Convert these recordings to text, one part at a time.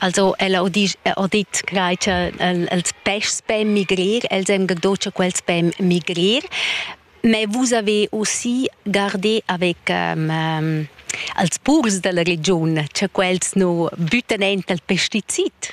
Also el ha dit quai cha els peschs pon migrir, els han do cha quels pon migrir. Ma vus avais aussi gardé avec ehm als purs della regiun, cha quels nu büttan aint al pesticid.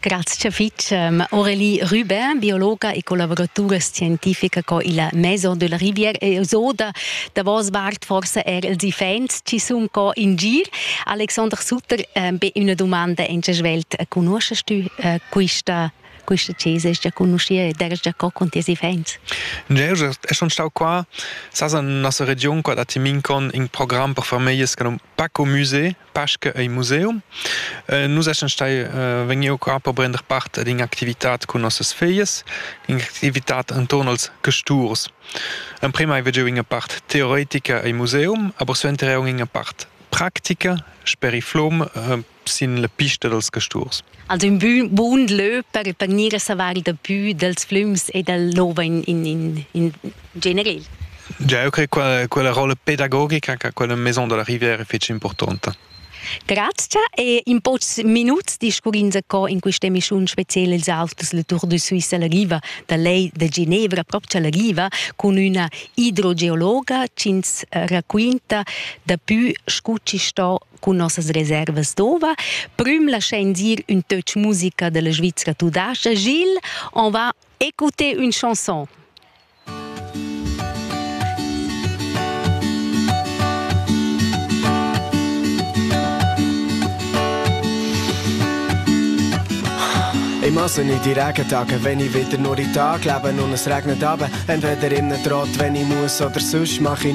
Grazia fitg Aurélie Rubin, biologa e collaboratura scientifica co illa Maison de la Rivière e so da davos vart forse er els iffaints chi sun co in gir. Alexander Sutter, be üna dumanda in che svelt conosces tü quista quista chesa es già conoscia ed eras già co con tes iffaints? Ne, eu es schon stau qua, sas in nossa region qua da Timincon in program per famiglie che num Paco Musée Pasche ei museum. Eh, nus essen stai eh, vegniu qua per prender part ad in'activitat cun nossas feias, in'activitat intorno als casturs. Emprima hai veggiu ina part teoretica ei museum, aber suenter auch ina part practica, sper i flom, eh, sin la pista dels casturs. Also ün bun, bun lö per panir e savar da pü dels flüms e del nova in, in, in, in generel. Ja, eu crei quella, quella rolla pedagogica che quella Maison della Riviera è fece importante. Grazie e in pocs minuts discurrins co in questa emissione speciale els auters le Tour de Suisse alla riva da lei de Ginevra proprio alla riva con una idrogeologa ci ins racconta da più scucci sto cun nossas reservas d'ova. Prüm laschain dir ün töch musica della Svizra tudascha. Gilles, on va écouter une chanson. Ich muss nicht die Regentag, wenn ich wieder nur in den Tag lebe und es regnet aber, entweder in den Trott, wenn ich muss oder sonst mache ich